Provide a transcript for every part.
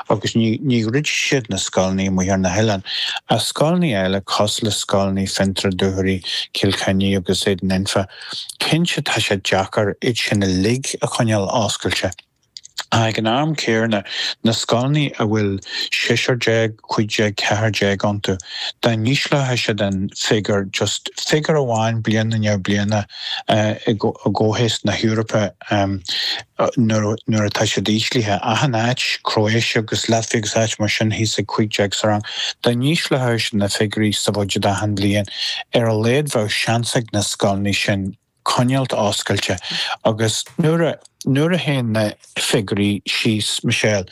Agus níor dhruid siad na scoileanna amuigh ar na hoileáin, ach scoileanna eile cosúil le scoileanna Fionntrá, Dúchoraidh, Cill Chainnigh agus Éadan Anfa. Cinnte tá sé deacair iad sin uilig a choinneáil oscailte, ach ag an am céarna, na scoileanna a bhfuil seisear déag, cúig déag, ceathair déag iontu, dá n-ísleochadh siad an figiúr just figiúr amháin bliain i ndiaidh bliana i gcomhthéacs na hEorpa, nuair atá siad íslithe, achan áit, Croatia agus Latvia agus áit mar sin, thíos ag 15 sa rang. Dá n-ísleochaimis na figiúirí sa bhuiséad achan bhliain, ar a laghad bheadh seans ag na scoileanna sin coinneáilt oscailte. Agus nuair a, nuair a théann na figiúirí síos, Michelle,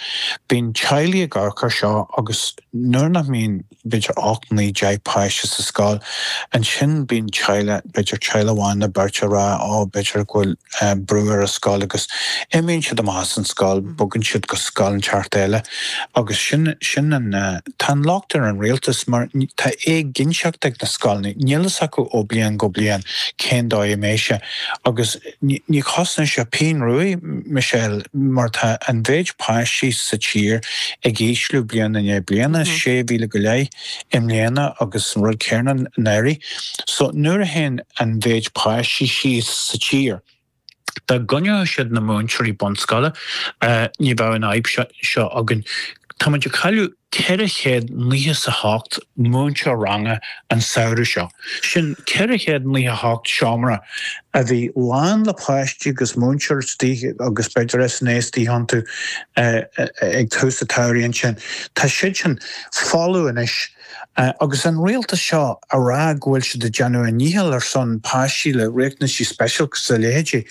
bíonn teaghlaigh ag amharc ar seo agus nuair nach mbíonn, b'fhéidir ocht, naoi, deich páiste sa scoil. Ansin bíonn teaghlaigh, b'fhéidir teaghlach amháin nó beirt ag rá ó b'fhéidir go bhfuil brú ar an scoil agus imíonn siad amach as an scoil, bogann siad go scoil inteacht eile agus sin, sin an, tá an locht ar an rialtas mar tá éiginnteacht ag na scoileanna, níl fhios acu ó bliain go bliain cén dóigh a mbeidh sé agus. Ní chosnaíonn sé pingin ruadh, Michelle, mar tá an mhéid páistí sa tír ag ísliú bliain i ndiaidh bliana, 6,000 go leith i mbliana agus an rud céarna anuraidh. So nuair a théann an mhéid páistí síos sa tír, dá gcoinneodh siad na múinteoirí bunscoile, ní bheadh an fhadhb seo againn. Tá muid ag cailleadh. 498 múinteoir ranga an samhradh seo, sin 498 seomra a bhí lán le páistí agus múinteoir istigh agus b'fhéidir SNA istigh iontu ag tús an tsamhraidh ansin. Tá siad sin folamh anois agus an rialtas seo ag rá go bhfuil siad ag déanamh a ndícheall ar son páistí le riachtanaisí speisialta is a leithéidí,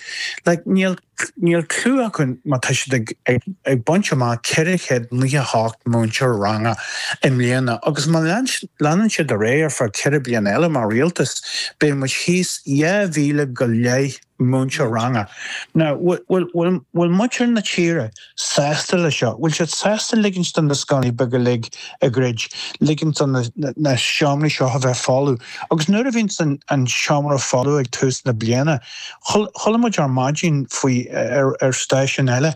like níl. Níl clue acu má tá siad ag baint amach 498 múinteoir ranga i mbliana agus má leanann siad ar aghaidh ar feadh ceithre bliana eile mar rialtas, beidh muid thíos 2,000 go leith múinteoir ranga. Nó bhfuil muintir na tíre sásta leis seo? Bhfuil siad sásta ligint do na scoileanna beaga uilig a dhruid, ligint do na seomraí seo a bheith folamh? Agus nuair a bhíonns an seomra folamh ag tús na bliana, chuala muid ar maidin faoi, ar stáisiún eile,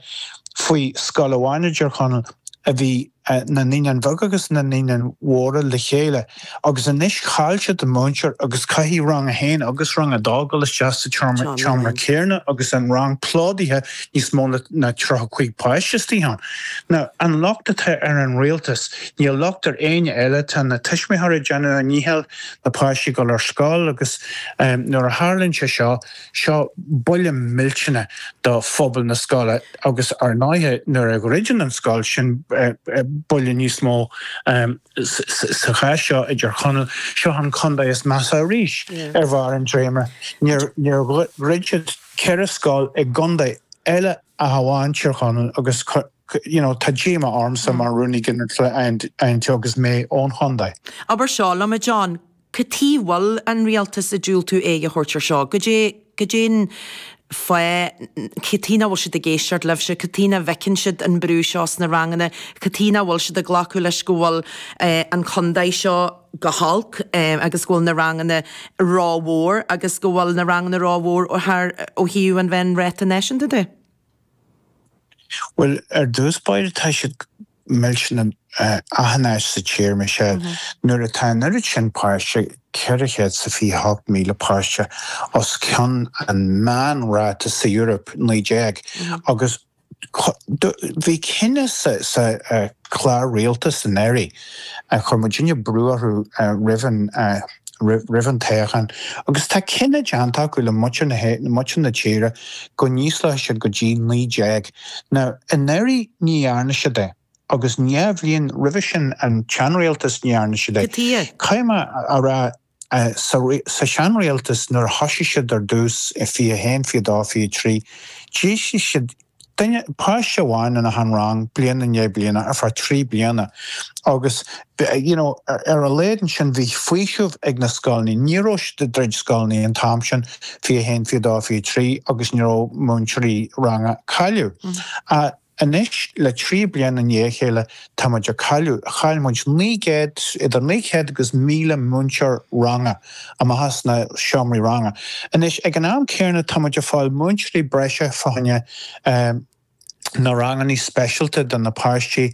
faoi scoil amháin i dTír Chonaill a bhí, na Naíonáin Bheaga agus na Naíonáin Mhóra le chéile agus anois chaill siad an múinteoir agus caithfidh Rang 1 agus Rang 2 dul isteach sa tseomra céanna agus an rang plódaithe níos mó ná tríocha cúig páiste istigh ann. Ná an locht atá ar an rialtas? Níl locht ar éinne eile, tá na tuismitheoirí ag déanamh a ndícheall na páistí dul ar scoil agus nuair a tharlaíonn sé seo, Seo buille millteanna do phobal na scoile agus ar ndóighe nuair a dhruideann an scoil sin buille níos mó sa chás seo i dTír Chonaill. Seo an contae is measa arís ar bharr an dréimire. Níor dhruid siad ceithre scoil i gcontae eile ach amháin Tír Chonaill agus you know tá díomá ormsa mar Rúnaí Ginearálta an INTO agus mé ón chontae. Abair seo liom a John, Cad tuige a bhfuil an Rialtas ag diúltú aghaidh a thabhairt ar seo? Goidé, goidé'n fáth? Cad tuige nach bhfuil siad ag éisteacht libhse? Cad tuige nach bhfeiceann siad an brú seo sna ranganna? Cad tuige nach bhfuil siad ag glacadh leis go bhfuil an contae seo go holc agus go bhfuil na ranganna ró-mhór agus go bhfuil na ranganna ró-mhór thar ó thaobh an mheánráta náisiúnta de? Bhuel, ar dtús báire tá siad Níl sé ina ábhar áthais sa tír, a Mhichelle. Nuair atá an oiread sin páiste, 428,000 páiste, os cionn an meánráta sa Eoraip, 19, agus bhí cinneadh sa chlár rialtas i ndáiríre chuir muidinne brú orthu roimh an toghchán, agus tá cinneadh déanta acu le muintir na tíre go n-ísleodh siad go dtí 19 Now, i ndairíre ní dhearna siad é, agus an dá bhliain roimhe sin an tseanrialtas ní dhearna siad é. Caithfidh mé a rá, sa seanrialtas nuair a thoisigh siad ar dtús, 21, 22, 23, d'ísligh siad duine, páiste amháin in achan rang bliain i ndiaidh bliana ar feadh trí bliana agus you know ar a laghad ansin bhí faoiseamh ag na scoileanna, ní raibh siad ag druid scoileanna an t-am sin, 21, 22, 23 agus ní raibh múinteoirí ranga á gcailleadh. Anois le trí bliana i ndiaidh a chéile tá muid ag cailleadh, chaill muid 900, idir 900 agus 1000 múinteoir ranga amach as na seomraí ranga. Anois ag an am céanna tá muid ag fáil múinteoirí breise fá choinne na ranganna speisialta do na páistí